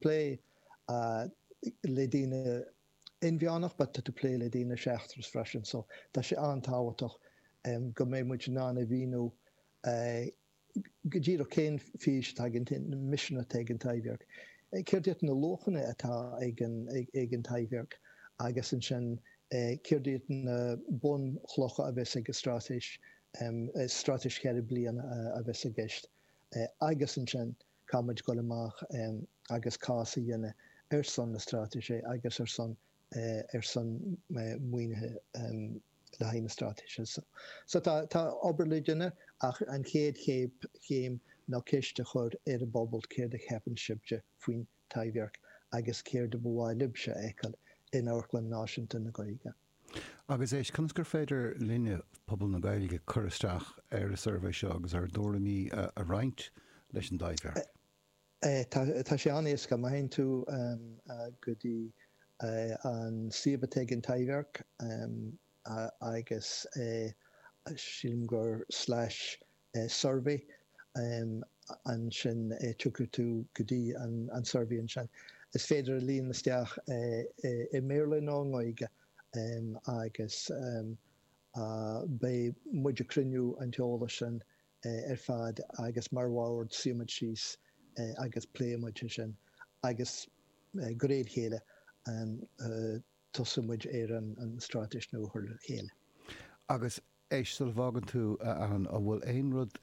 plé le daoine inmheánach ach tá tú ag plé le daoine seachtracha freisin. So tá sé an-tábhachtach go mbeidh muid in ann a mhíniú go díreach cén fís atá cén misean atá ag an Taibhdhearc. Céard iad na luachanna atá ag an Taibhdhearc agus ansin céard iad na bunchlocha a bheas ag an straitéis, straitéis cheithre bliana a bheas i gceist agus ansin, Caithfidh muid dul amach agus cás a dhéanamh ar son na straitéise agus ar son ar son maoinithe le haghaidh na straitéise. So so tá tá obair le déanamh ach an chéad chéad chéim ná ceist a chur ar an bpobal céard a cheapann sibhse faoin Taibhdhearc agus céard a ba mhaith libhse a fheiceáil in Amharclann Náisiúnta na Gaeilge. Agus éist, conas gur féidir linne, pobal na Gaeilge, cur isteach ar an suirbhé seo agus ár dtuairimí a roinnt leis an dTaibhdhearc? Tá sé an-éasca. Má théann tú go dtí an suíomh atá ag an Taibhdhearc, agus sílim gur slash suirbhé um ansin tiocfaidh tú go dtí an suirbhé ansin. Is féidir é a líonadh isteach i mBéarla nó i nGaeilge um agus um beidh muid ag cruinniú an t-eolas sin ar fad agus mar bhord suífidh muid síos agus pléifidh muid é sin agus de réir a chéile um tosóidh muid ar an straitéis nua a chur le chéile. Agus Éist sula bhfágann tú, a Alan, an bhfuil aon rud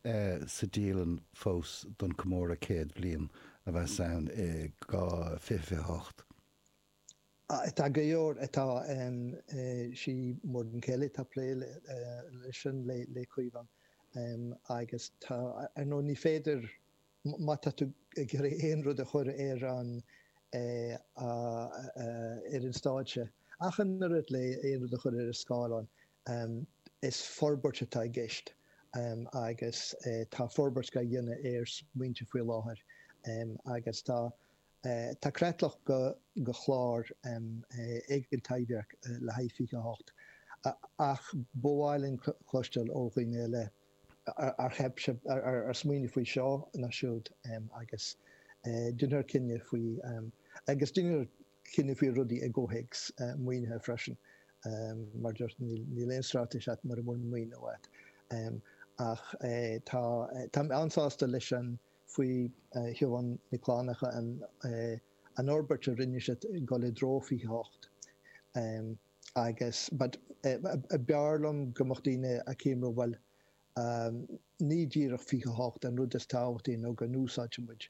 sa dialann fós don comóradh céad bliain a bheas ann i 2028? Tá go leor. Tá sé mar a chéile tá plé leis sin le tamall agus dar ndóigh ní féidir má tá tú ag iarraidh aon rud a chur ar an ar an stáitse ach an oiread le aon rud a chur ar an scáileán. Um, is forbairt atá i gceist. Um, agus, eh, tá forbairt á dhéanamh ar smaointe faoi láthair. Um, agus tá, eh, tá creatlach de, de chlár, um, eh, ag an Taibhdhearc le haghaidh 28. A, ach ba mhaith linn cloisteáil ó dhaoine eile ar, an dtuigeann sibh, ar, ar, ar smaoinigh faoi seo nó siúd. Um, agus, eh, déanfar cinneadh faoi, um, agus déanfar cinneadh faoi rudaí i gcomhthéacs maoinithe freisin. Mar a dúirt, níl aon straitéis agat mura bhfuil maoiniú agat. Ach táim an-sásta leis an faoi Shiobhán Nic Fhlannacha an fhorbairt a rinneadh ag dul i dtreo 28. Agus b'fhearr liom go mbeadh daoine acu mar, bhuel, a Ní díreach 28 an rud is tábhachtaí nó go n-úsáidfidh muid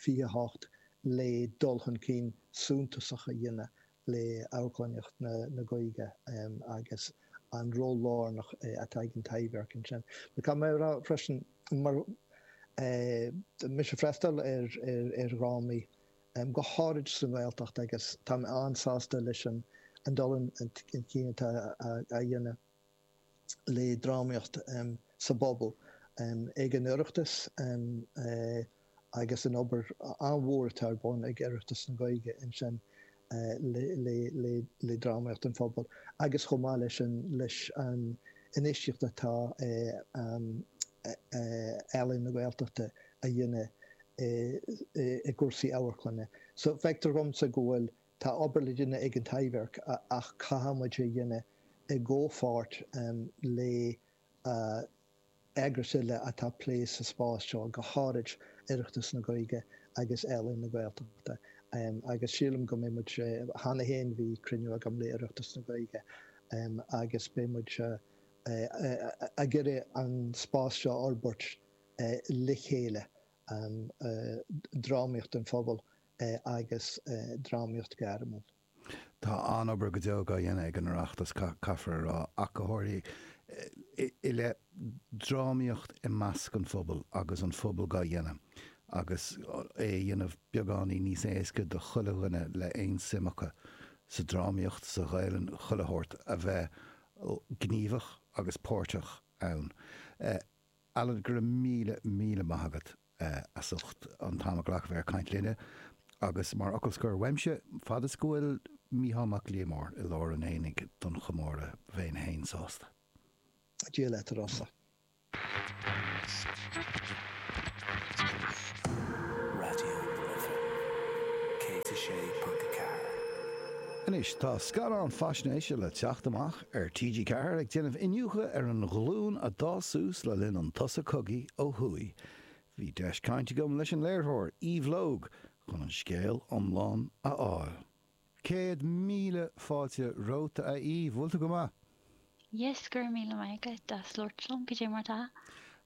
28 le dul chun cinn suntasach a dhéanamh le amharclannaíocht na Gaeilge agus an ról lárnach atá ag an Taibhdhearc ansin. Caithfidh mé a rá freisin bím féin, mé ag freastal ar dhrámaí, go háirid sa nGaeltacht, agus táim an-sásta leis an dul chun cinn atá á dhéanamh. le drámaíocht sa bpobal, ag an Oireachtas agus an obair an-mhór atá ar bun ag Oireachtas na Gaeilge ansin le drámaíocht an phobail agus chomh maith leis an infheistíocht atá Ealaín na Gaeltachta a dhéanamh i gcúrsaí amharclainne. So feictear dhomsa go bhfuil Tá obair le déanamh ag an Taibhdhearc ach caithfidh muid é a dhéanamh i gcomhpháirt le heagrais eile atá ag plé sa spás seo, go háirid Oireachtas na Gaeilge agus Ealaín na Gaeltachta. Agus sílim go mbeidh muid, cheana féin bhí cruinniú agam le Oireachtas na Gaeilge agus beidh muid ag iarraidh an spás seo a fhorbairt le chéile, drámaíocht an phobail. eh, agus eh, drámaíocht ghairmiúil. Tá an-obair go deo dhá dhéanamh ag an Oireachtas, caithfear a rá, ach go háirithe, eh, i leith drámaíocht i measc an phobail agus an pobal dhá dhéanamh agus é a dhéanamh beagáinín níos éasca do chuile dhuine le aon suim acu sa drámaíocht, sa Ghaelainn, chuile shórt, a bheith gníomhach agus páirteach ann. Eh. Alan, go raibh míle, míle maith agat as ucht an t-am a ghlacadh a caint linne. Agus mar fhocal scoir uaimse, fad is go bhfuil Mícheál Mac Liammóir i lár an aonaigh don chomóradh, bhéinn fhéin sásta. Dia leat, a Rossa. Raidió na Life 106.4. Anois, tá scannán faisnéise le teacht amach Ar TG4 ag déanamh iniúchadh ar an ghlúin a d'fhás suas le linn an tsosa cogaidh ó thuaidh, bhí deis caint agam leis an léirtheoir, Eve Logue, chun an scéal iomlán a fháil. Céad míle fáilte romhat, a Eve. Bhfuil tú go maith? Yes, go raibh míle maith agat as labhairt liom. Goidé mar atá?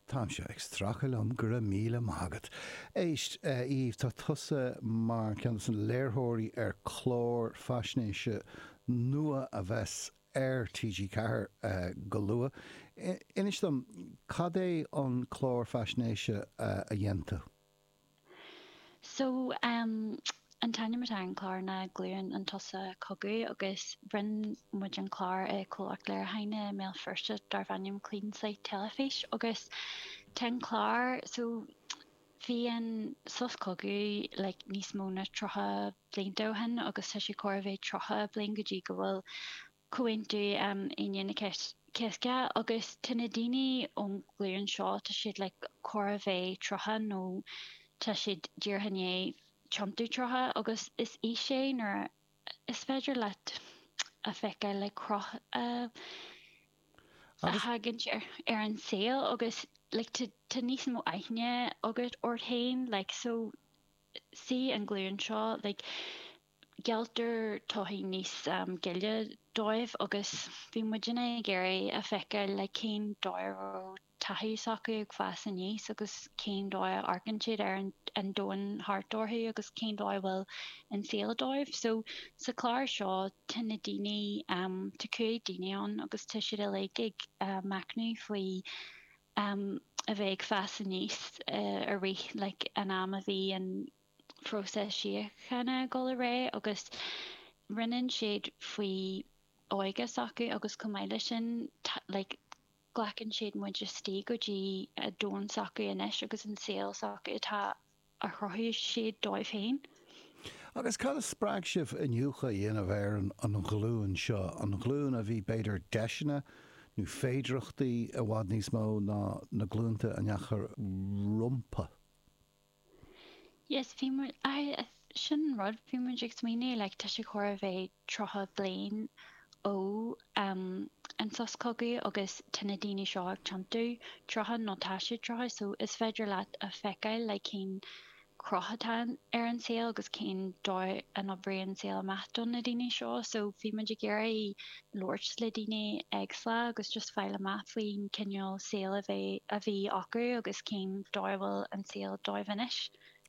Táimse ag stracadh liom, go raibh míle maith agat. Éist, a Eve, tá tusa mar ceann de na léirtheoirí ar clár faisnéise nua a bheas ar TG Ceathair go luath. Inis dom, cad é an clár faisnéise a dhein tú? So, em, an t-ainm atá ar an chlár ná Glúin an tSosa Chogaidh agus rinne muid an clár i comhlacht léiriúcháin i mBéal Feirste darb ainm Clean Slate Teilifís agus tá an clár, so bhí an sos cogaidh like níos mó na tríocha blianta ó shin agus tá sé chóir a bheith tríocha bliain go dtí go bhfuil Comhaontú Aoine an Chéasta, agus tá na daoine ón nglúin seo, tá siad like chóir a bheith tríocha nó tá siad díreach i ndiaidh tiontú tríocha agus is aois é nuair a is féidir leat a feiceáil like cruth a thagann ar ar an saol agus like tá níos mó aithne agat ort féin like so sí an ghlúin seo like Gealltar todhchaí níos gile dóibh agus bhí muidinne ag iarraidh a feiceáil like cén dóigh a raibh taithí s'acu ag fás aníos agus cén dóigh a amharcann siad ar an domhan thart orthu agus cén dóigh a bhfuil an saol dóibh. So sa chlár seo tá na daoine, tá cúig daoine ann agus tá siad uilig ag machnamh faoi a bheith ag fás aníos i rith like an am a bhí an próiseas síochána ag dul ar aghaidh agus roinneann siad faoi óige s'acu agus chomh maith leis sin like glacann siad muid istigh go dtí a domhan s'acu anois agus an saol s'acu atá a chruthaigh siad dóibh féin. Agus cad a spreag sibh iniúchadh a dhéanamh ar an an ghlúin seo, an ghlúin a bhí b'fhéidir deiseanna nó féidireachtaí i bhfad níos mó ná na glúnta a ndeachaigh rompu? Yes, bhí muid, sin an rud, bhí muid ag smaoineamh like tá sé chóir a bheith tríocha bliain ó an sos cogaidh agus tá na daoine seo ag tiontú, tríocha nó tá siad tríocha so is féidir leat a feiceáil like cén cruth atá ar an saol agus cén dóigh a d'oibrigh an saol amach do na daoine seo so bhí muid ag iarraidh labhairt le daoine éagsúla agus just fáil amach faoin cineál saol a bheith, a bhí acu agus cén dóigh a bhfuil an saol dóibh anois.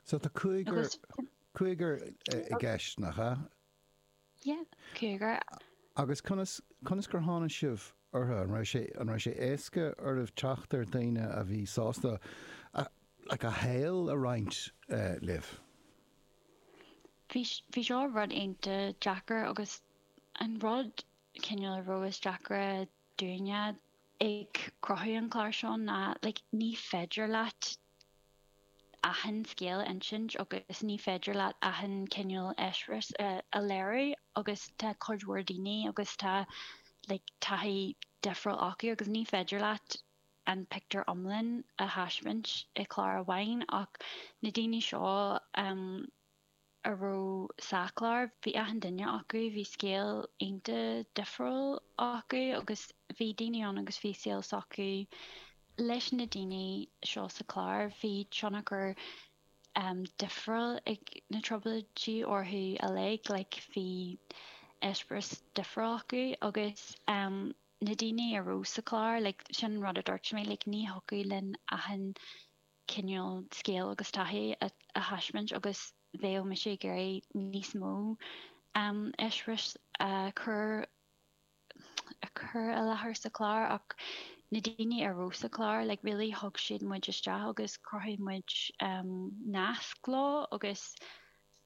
So tá cúigear, cúigear i gceist nach ea? Yeah, cúigear. Agus conas, conas gur tháinig sibh orthu? An raibh sé, an raibh sé éasca oraibh teacht ar daoine a bhí sásta a, like a shaol a roinnt libh? Bhí, bhí seo rud iontach deacair agus An rud, cineál, a raibh is deacra dúinne ag cruthú an chláir seo ná, like, ní féidir leat achan scéal a insint agus ní féidir leat achan cineál eispéireas a léiriú agus tá cuid mhór daoine agus tá, like, taithí difriúil acu agus ní féidir leat an pictiúr iomlán a thaispeáint i chlár amháin ach na daoine seo, a raibh sa chlár, bhí achan duine acu, bhí scéal iontach difriúil acu agus bhí daoine ann agus bhí saol s'acu. Leis na daoine seo sa chlár, bhí tionchar difriúil ag na Trioblóidí orthu uilig, like bhí eispéireas difriúil acu agus na daoine a raibh sa chlár, like sin an rud a dúirt mé, like ní thiocfadh linn achan cineál scéal agus taithí a thaispeáint agus bheadh mise ag iarraidh níos mó eispéiris a chur a chur i láthair sa chlár ach na daoine a raibh sa chlár like really thug siad muid isteach agus chruthaigh muid nasc leo agus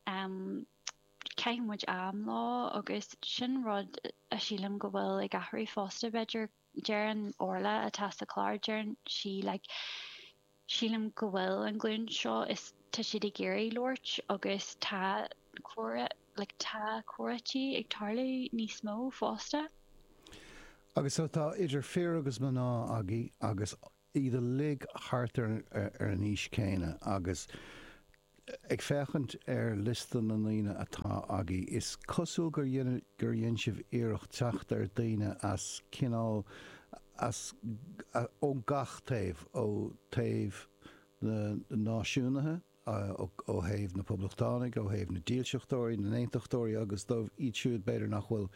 chaith muid am leo agus sin rud a sílim go bhfuil ag athrú fosta b'fhéidir Deireann Orla, atá sa chlár, deireann sí like Sílim go bhfuil an ghlúin seo is tá siad ag iarraidh labhairt agus tá comhrá like tá comhráití ag tarlú níos mó fosta. Agus so tá idir fir agus mná againn agus iad uilig thart ar an aois chéanna agus ag féachaint ar liosta na ndaoine atá agaibh, is cosúil gur dhein sibh iarracht teacht ar daoine as cineál as, ó gach taobh, ó thaobh na náisiúnaithe, ó thaobh na poblachtánaigh, ó thaobh na dílseachtóirí, na n-aontachtóirí agus dóibh iad siúd b'fhéidir nach bhfuil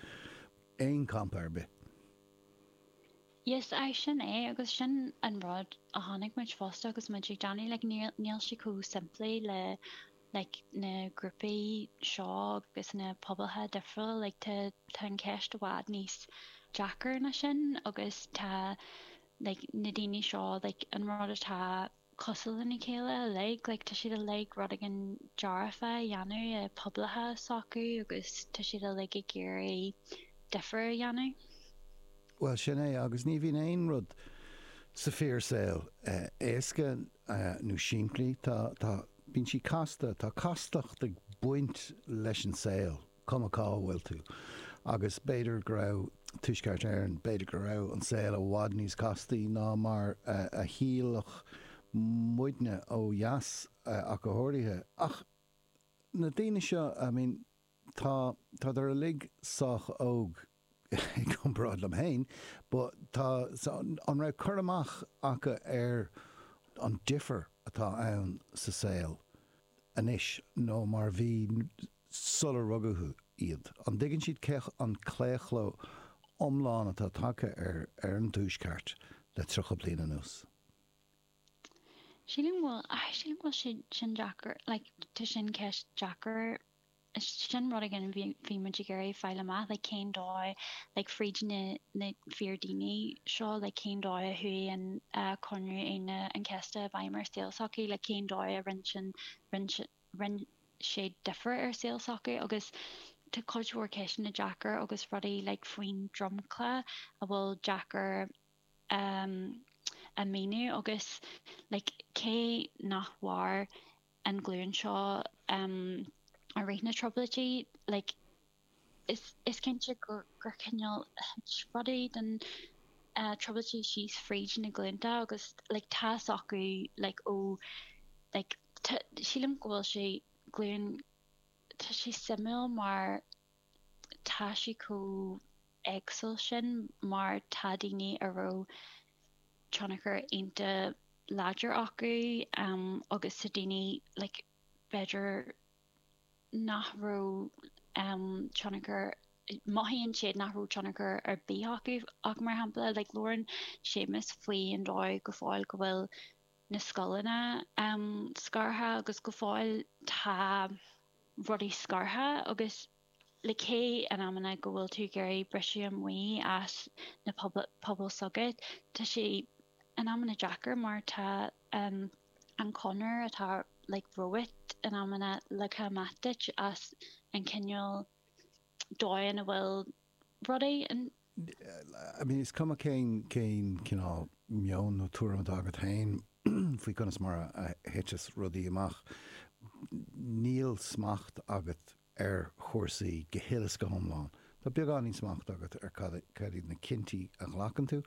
in aon champa ar bith. Yes, aye, sin é, agus sin an rud a chonaic muid fosta agus muid ag déanamh, like, níl, níl sé chomh simplí le, like, na grúpaí seo agus na pobail difriúla, like, tá, tá an cheist i bhfad níos deacra ná sin agus tá, like, na daoine seo, like, an rud atá. cosúil lena chéile uilig, like tá siad uilig rud éigin dearfa a dhéanamh, i bpobail s'acu agus tá siad uilig ag iarraidh difear a dhéanamh. Bhuel, sin é, agus ní bhíonn aon rud sa fíor saol éasca nó simplí, tá, tá, bíonn siad casta, tá castacht ag baint leis an saol. cuma cá bhfuil tú. Agus b'fhéidir go raibh Tuaisceart Éireann, b'fhéidir go raibh an saol i bhfad níos castaí ná mar a shílfeadh muidne ó dheas ach go háirithe. Ach na daoine seo, I mean, tá siad uilig sách óg. i gcomparáid liom féin, but, tá, so, an raibh cur amach acu ar an difear atá ann sa saol anois ná mar a bhí sular rugadh iad? An dtuigeann siad cé an claochló iomlán atá tagtha ar ar an tuaisceart le tríocha bliain anuas? Sílim go bhfuil, sílim go bhfuil sé sin deacair, like, tá sin ceist deacair. sin rud éigin a bhí muid ag iarraidh fáil amach, like cén dóigh, like fríd na na fíordhaoine seo, like cén dóigh a chuaigh an Comhaontú Aoine an Chéasta i bhfeidhm ar saol s'acu, like cén dóigh a rinne sin, rinne sé difear ar saol s'acu agus tá cuid mhór ceisteanna deacair agus rudaí like faoin dromchla a bhfuil deacair a mhíniú agus like cé nach mhair an ghlúin seo i rith na Trioblóidí like is cinnte gur cineál rudaí den Trioblóidí síos fríd na glúnta agus like tá acu like ó like sílim go bhfuil sé glúin tá sé suimiúil mar tá sí chomh eagsúil sin mar tá daoine a raibh tionchar iontach láidir acu agus tá daoine like b'fhéidir nach raibh tionchar, mothaíonn siad nach raibh tionchar ar bith acu ach mar shampla like labhrann Séamus faoin dóigh go fóill go bhfuil na scoileanna scartha agus go fóill tá. rudaí scartha agus like cé in amanna go bhfuil tú ag iarraidh briseadh amach as na pobail s'agat, tá sé in amanna deacair mar tá an chonair atá like romhat in amanna leagtha amach duit as an cineál dóigh a bhfuil rudaí. I mean, is cuma cén cineál meoin nó tuairim atá agat féin faoi conas mar a thiteas rudaí amach, níl smacht agat ar chúrsaí go huile is go hiomlán. Tá beagáinín smacht agat ar cad iad na cinntí a ghlacann tú,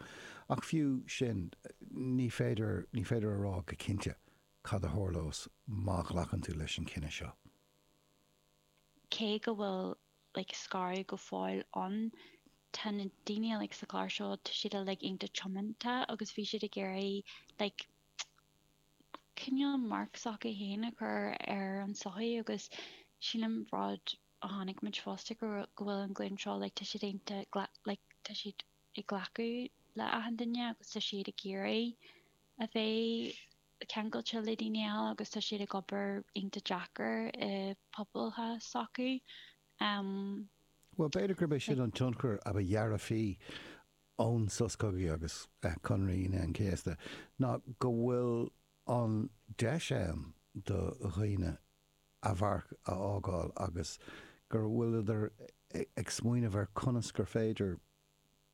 ach fiú sin, ní féidir, ní féidir a rá go cinnte cad a tharlós má ghlacann tú leis an cinneadh seo. Cé go bhfuil like scaradh go fóill ann. Tá na daoine like sa chlár seo tá siad like iontach tiomanta agus bhí siad ag iarraidh like cineál marc s'acu féin a chur ar an sochaí agus sin an rud a chonaic muid fosta go go bhfuil an ghlúin seo like tá siad iontach like tá siad ag glacadh le achan duine agus tá siad ag iarraidh a bheith ceangailte le daoine eile agus tá siad ag obair iontach deacair i bpobail s'acu. Bhuel, b'fhéidir gurb é sin an tionchar ab dhearfaí ón sos cogaidh agus Comhaontú Aoine an Chéasta, ná go bhfuil an deis ann do dhaoine a mharc a fhágáil agus go bhfuiltear ag smaoineamh ar conas gur féidir,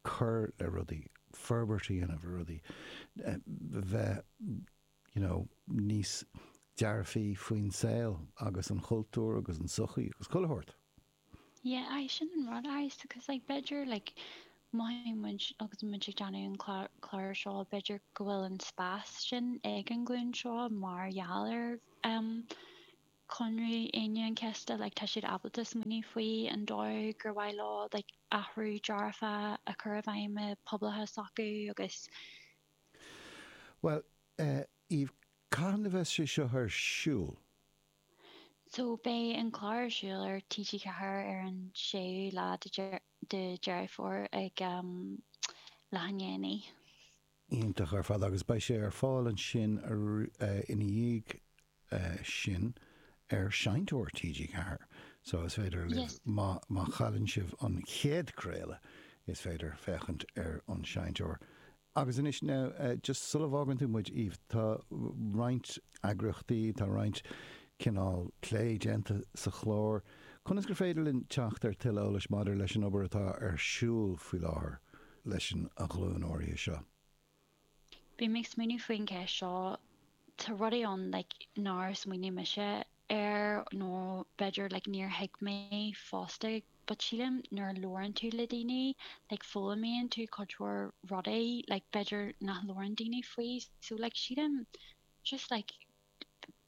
cur le rudaí, forbairt a dhéanamh ar rudaí, bheith you know níos dearfaí faoin saol agus an chultúr agus an sochaí agus chuile shórt. Yeah aye sin an rud aye so cause like b'fhéidir like mothaíonn muid agus muid ag déanamh an clár seo b'fhéidir go bhfuil an spás sin ag an ghlúin seo mar gheall ar ehm Comhaontú Aoine an Chéasta like tá siad ábalta smaoineamh faoi an dóigh gur mhaith leo like athrú dearfach a chur i bhfeidhm i bpobail s'acu agus. Bhuel eh, Eve cathain a bheas sé seo ar siúl? So beidh an clár ar siúl ar TG4 ar an 6ú lá de Deireadh Fómhair ag am leathdhéanach. iontach ar fad agus beidh sé ar fáil ansin ina dhiaidh sin ar Seinnteoir TG4 so is féidir libh, má chailleann sibh an chéad craoladh, is féidir féachaint ar an Seinnteoir. Agus anois now, just sula bhfágann tú muid, Eve, tá roinnt eagraíochtaí, tá roinnt cineál plé déanta sa chlár. Conas gur féidir linn teacht ar tuilleadh eolais maidir leis an obair atá ar siúl faoi láthair? leis an ghlúin áirithe seo. Bhí mé ag smaoineamh faoin gceist seo, tá rudaí ann like nár smaoinigh mise air nó b'fhéidir like níor thuig mé fosta but sílim nuair a labhrann tú le daoine like foghlaimíonn tú cuid mhór rudaí like b'fhéidir nach labhrann daoine faoi so like sílim just like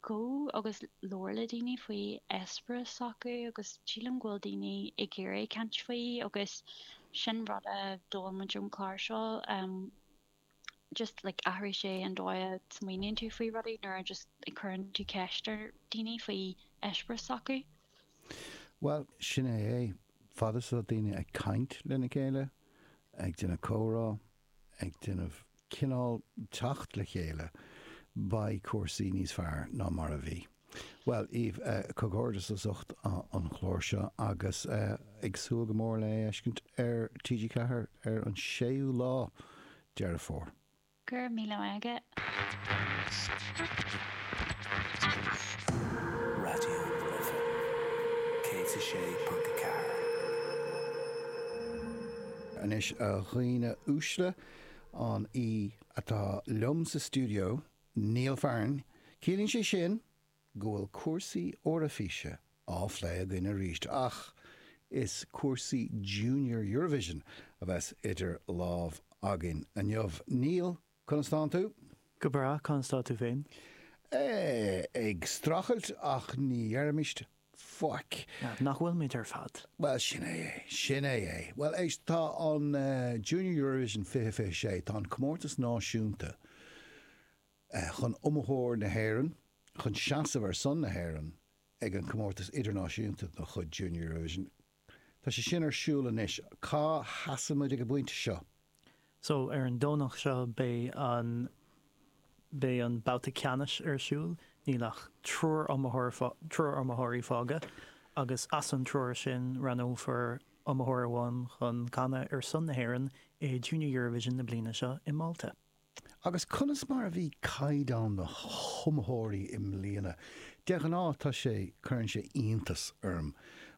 gabh agus labhair le daoine faoi eispéireas s'acu agus sílim go bhfuil daoine ag iarraidh caint faoi agus sin rud a d'fhoghlaim muid ón chlár seo em just like athraigh sé an dóigh a smaoiníonn tú faoi rudaí nuair a just a chuireann tú ceist ar daoine faoi eispéireas s'acu. Bhuel, sin é é. Fad is atá daoine ag caint lena chéile, ag déanamh comhrá, ag déanamh cineál teacht le chéile, beidh cúrsaí níos fearr ná mar a bhí. Bhuel, Eve, comhghairdeas as ucht an chlár seo agus ag súil go mór le é a fheiscint ar TG4 ar an 6ú lá Deireadh Fómhair. Go raibh míle agat. Raidió na Life 106.4. Anois a dhaoine uaisle, an té atá liom sa stiúideo, Neil Fearn, ciallaíonn sé sin go bhfuil cúrsaí Eoraifíse á phlé againn arís, ach is cúrsaí Junior Eurovision a bheas idir lámh againn inniu. Neil, Conas tánn tú. Go breá, conas atá tú féin. Ag streachailt ach ná deirimis faic. Nach bhfuilimid ar fad? Bhuel, sin é é. Sin é é. Bhuel, éist, tá an Junior Eurovision 2026, tá an comórtas náisiúnta chun iomaitheoir na hÉireann, chun seasamh ar son na hÉireann ag an gcomórtas idirnáisiúnta de chuid Junior Eurovision, Tá sé sin ar siúl anois. Cá sheasann muid ag an bpointe seo? So, ar an Domhnach seo beidh an, beidh an babhta ceannais ar siúl. Níl ach triúr iomaitheoir, triúr iomaitheoirí fágtha agus as an triúr sin roghnófar iomaitheoir amháin chun canadh ar son na hÉireann i Junior Eurovision na bliana seo i Málta. Agus conas mar a bhí caighdeán na hiomaitheoirí i mbliana? De ghnáth tá sé, cuireann sé iontas orm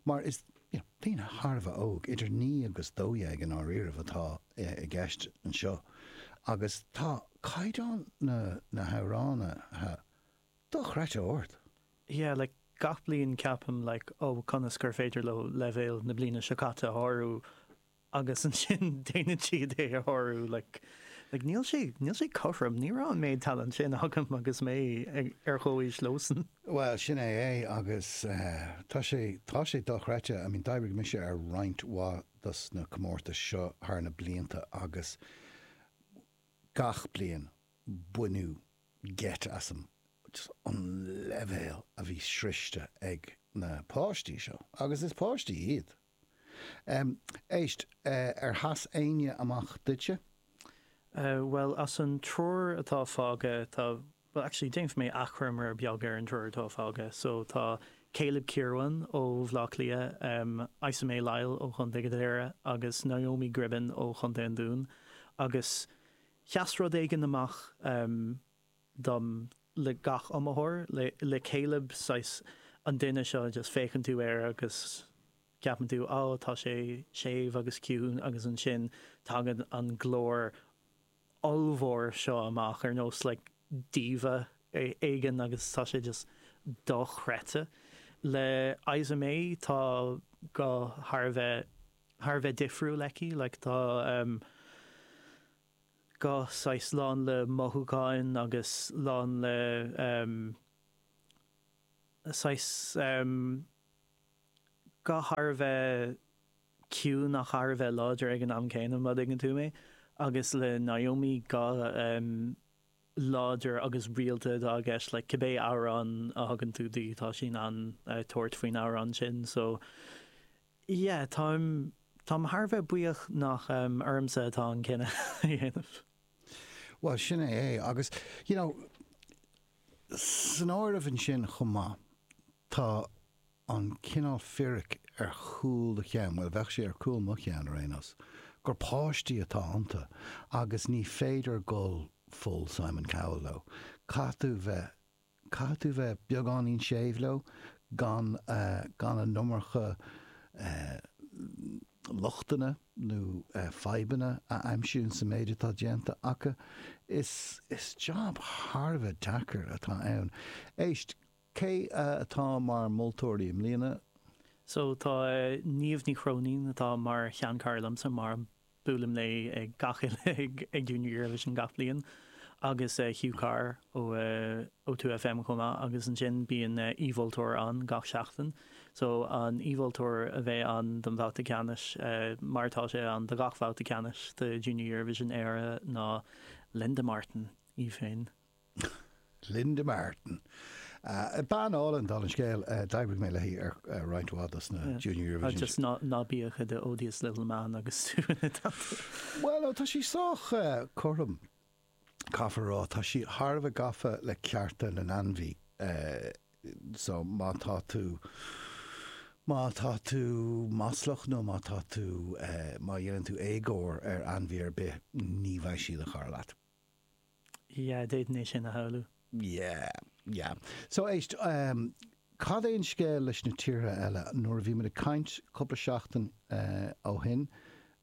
mar is, you know, daoine thar a bheith óg, idir naoi agus dó dhéag i ndáiríribh atá i gceist anseo, agus tá caighdeán na na hamhránaithe dochreidte ard. Yeah, like, gach bliain ceapaim, like, oh, conas gur féidir leo leibhéal na bliana seo caite a shárú? agus ansin déanann siad é a shárú. Like, like níl sé, níl sé cothrom, ní raibh an méid talent sin agam agus mé ag, ar chomhaois leosan. Bhuel, sin é é agus tá sé, tá sé dochreidte. I mean, d'oibrigh mise ar roinnt mhaith dos na comórtais seo thar na blianta agus gach bliain baineadh geit asam, just an leibhéal a bhí sroichte ag na páistí seo, agus is páistí iad. Éist, ar sheas éinne amach duitse? Bhuel, as an triúr atá fágtha, tá, bhuel, actually, déanfaidh mé achoimre beag ar an dtriúr atá fágtha. So, tá Caleb Kirwan ó Bhleá Cliath, Isa May Lyle ó Chontae Dhoire agus Naomi Gribben ó Chontae an Dúin. Agus sheas rud éigin amach. dom le gach iomaitheoir le le chéile saghas an duine seo just féachann tú air agus ceapann tú á tá sé séimh agus ciúin agus ansin tagann an glór ollmhór seo amach ar nós like diva éigin agus tá sé just dochreidte. Le Isa Mae tá guth thar a bheith thar a bheith difriúil aici like tá ehm guth saghas lán le mothúcháin agus lán le saghas guth thar a bheith ciúin ach thar a bheith láidir ag an am céanna, má dtuigeann tú mé, agus le Naomi guth láidir agus rialta atá i gceist le cibé amhrán a thugann tú di, tá sí in ann tabhairt faoin amhrán sin. So. Yeah, táim, táim thar a bheith buíoch nach ormsa atá an cinneadh a dhéanamh. Bhuel, sin é é. Agus, you know, san áireamh ansin chomh maith, tá an cineál fíric ar chúl do cheann, bhuel, bheadh sé ar cúl mo cheann ar aon nós, gur páistí atá iontu agus ní féidir dul full Simon Cowell leo. Caithfidh tú bheith Caithfidh tú bheith beagáinín séimh leo, gan gan a n-iomarca lochtanna nó fadhbanna a aimsiú in sa méid atá déanta acu. Is is job thar a bheith deacair atá ann. Éist, cé atá mar moltóirí i mbliana? So, tá Niamh Ní Chróinín atá mar sheanchara liomsa, mairim. Buailim léi ag gach uile Junior Eurovision gach bliain agus Hugh Carr ó ó Two FM chomh maith agus ansin bíonn aoi-mholtóir ann gach seachtain so an aoi-mholtóir a bheidh ann don bhabhta ceannais mar atá sí ann do gach babhta ceannais de Junior Eurovision Éire ná Linda Martin í féin. Linda Martin. Bean álainn, dála an scéil, d'oibrigh mé léi ar roinnt mhaith dos na Junior Eurovision. Agus ná bí i do odious little man agus tú ina timpeall. Bhuel, ó tá sí sách cothrom, caithfear a rá. Tá sí thar a bheith gafa le cearta na n-ainmhithe. So, má tá tú, má tá tú maslach nó má tá tú, má dhéanann tú éagóir ar ainmhí ar bith, ní bheidh sí ina cara leat. yeah, d'fhéadfainn é sin a shamhlú. yeah, yeah. So, éist, em, cad é an scéal leis na tíortha eile? Nuair a bhí muid ag caint cúpla seachtain, eh, ó shin,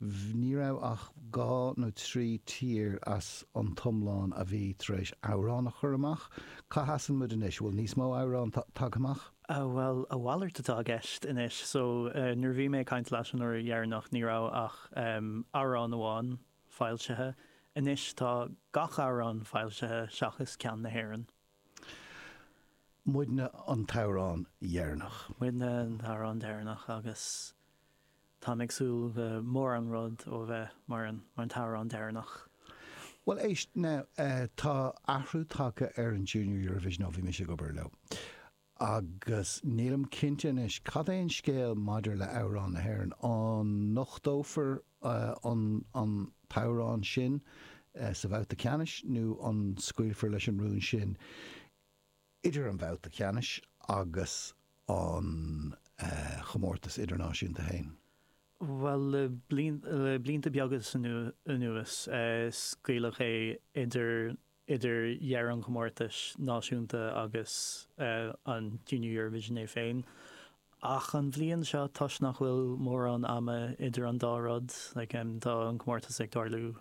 bh, ní raibh ach dhá nó trí tír as an t-iomlán a bhí tar éis amhrán a chur amach. Cá seasann muid anois? An bhfuil níos mó amhrán ta, tagtha amach? Ah, bhuel, a mhalairt atá i gceist anois. So, eh, nuair a bhí mé ag caint leat an uair dheireanach, ní raibh ach, em, amhrán amháin foilsithe. Anois tá gach amhrán foilsithe seachas ceann na hÉireann. Muidne an t-amhrán dheireanach. Muidne an t-amhrán deireanach agus táim ag súil le mórán rud ó bheith mar an t-amhrán deireanach. Bhuel éist, now, tá athrú tagtha ar an Junior Eurovision ó bhí mise ag obair leo. Agus nílim cinnte anois cad é an scéal maidir le amhrán na hÉireann. An nochtófar an t-amhrán sin sa bhabhta ceannais nó an scaoilfear leis an rún sin idir an babhta ceannais agus an chomórtas idirnáisiúnta féin? Bhuel, le blianta beaga anuas, scaoileadh é idir idir dheireadh an chomórtais náisiúnta agus an Junior Eurovision é féin. Ach an bhliain seo, toisc nach bhfuil mórán ama idir an dá rud, tá an comórtas ag tarlú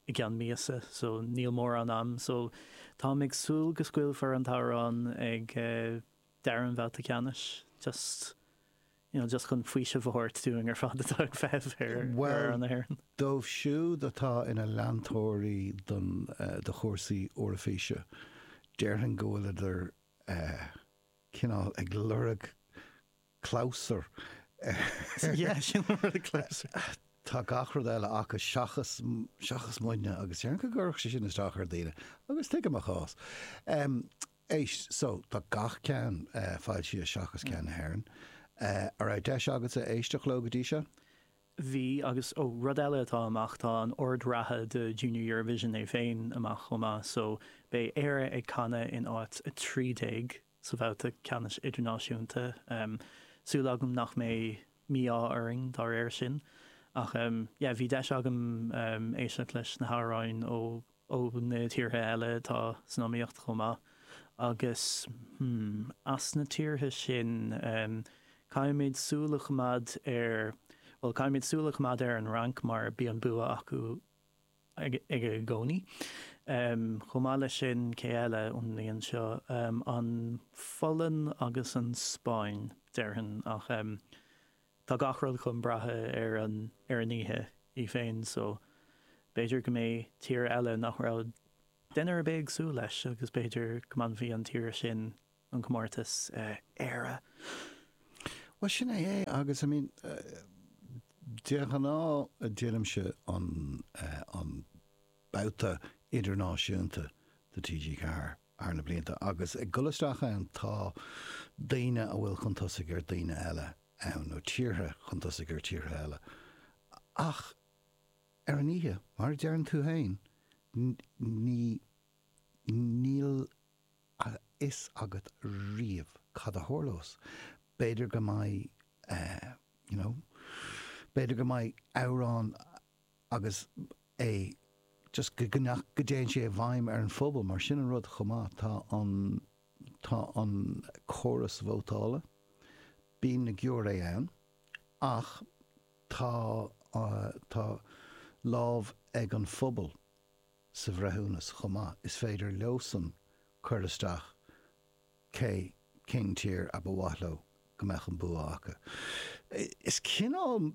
i gceann míosa, so níl mórán am, so táim ag súil go scaoilfear an t-amhrán ag deireadh an bhabhta ceannais, just. you know just chun faoiseamh a thabhairt dúinn ar fad atá ag feitheamh ar Bhuel, na hÉireann. dóibh siúd atá ina leantóirí don de chúrsaí Eoraifíse, déarfainn go bhfuileadar eh cineál ag lorg clabhsur ar Yeah, sin an rud, clabhsúr. tá gach rud eile acu seachas seachas muidne agus déarfainn go gcuirfeadh sé sin isteach ar daoine agus tuigim a chás. Em. Éist, so, tá gach ceann foilsithe seachas ceann na hÉireann. An raibh deis agatsa éisteacht leo go dtí seo? Bhí, agus oh, rud eile atá amach, tá an ord reatha do Junior Eurovision é féin amach chomh maith, so, beidh Éire ag canadh in áit 13 sa bhabhta ceannais idirnáisiúnta. Súil agam nach mbeidh mí-ádh orainn dá réir sin. Ach yeah, bhí deis agam éisteacht leis na hamhráin ó. ó na tíortha eile atá san iomaíocht chomh maith, agus as na tíortha sin caithfimid súil a choimeád ar, bhuel, caithfimid súil a choimeád ar an Fhrainc mar bíonn bua acu i gcónaí. Chomh maith leis sin, cé eile ón mbliain seo, an Pholainn agus an Spáinn, déarfainn, ach. Tá gach rud chun brath ar an ar an oíche í féin so b'fhéidir go mbeidh tír eile nach raibh duine ar bith ag súil leis agus b'fhéidir go mbainfeadh an tír sin an comórtas, Éire! Bhuel sin é é agus I mean de ghnáth déanaimse an an babhta idirnáisiúnta do TG4. Thar na blianta, agus ag dul isteach ann, tá daoine a bhfuil chun tosaigh ar daoine eile ann, nó tíortha chun tosaigh ar tíortha eile. Ach ar an oíche, mar a deireann tú féin, ní, níl a fhios agat riamh cad a tharlós. B'fhéidir go mbeidh eh, you know, b'fhéidir go mbeidh amhrán, agus é just go nach go dtéann sé i bhfeidhm ar an phobal mar sin an rud chomh maith tá an tá an córas vótála bíonn na giúiré ann ach tá tá lámh ag an phobal sa bhreithiúnas chomh maith is féidir leosan cur isteach cé cén tír a ba mhaith leo go mbeadh an bua acu? Is cineál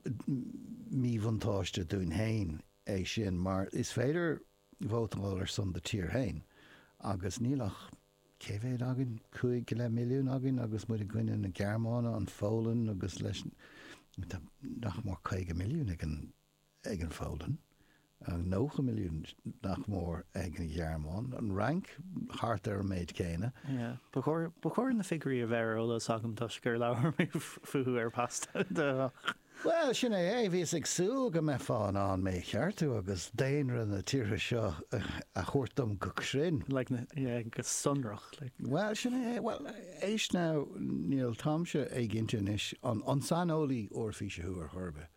míbhuntáiste dúinn féin é sin mar is féidir vótáil ar son do tír féin agus níl ach, cé mhéad againn, cúig go leith milliún againn agus muid i gcoinne na Gearmáine, an Pholainn agus leis nach mór caoga milliún ag an. ag an Pholainn, 90 milliún, nach mór, ag an Ghearmáin, an Fhrainc, thart ar an méid céanna. Ba chóir na figiúirí a bheith ar eolas agam toisc gur labhair mé fúthu ar Pasdeoch. Bhuel, sin é é. Bhíos ag súil go mbeifeá in ann mé a cheartú agus daonra na tíortha seo a thabhairt dom go cruinn. Go sonrach. Bhuel, sin é é. Bhuel, éist now, níl, táimse éiginnte anois, an saineolaí Eoraifíse thú ar chor ar bith?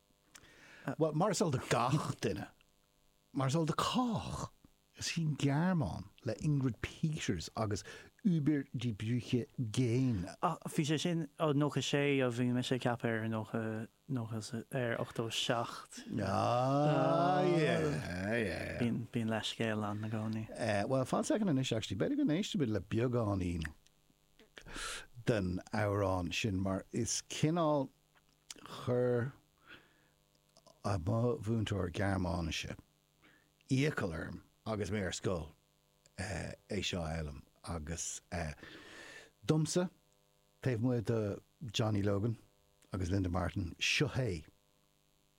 Bhuel, mar is eol do gach duine, mar is eol do chách, is í an Ghearmáin, le Ingrid Peters agus Über die Brücke gehen, Ach bhí sé sin, ó 96, ó bhí mise ag ceapadh ar 90, 90, ar 87. Bíonn leithscéal ann i gcónaí. Bhuel, fan soicind anois actually, b'fhéidir go n-éistfimid le beagáinín den amhrán sin mar is cineál, Chuir mo mhúinteoir Gearmáinise iachall orm agus mé ar scoil é seo a fhoghlaim agus domsa, taobh amuigh de Johnny Logan agus Linda Martin, seo é.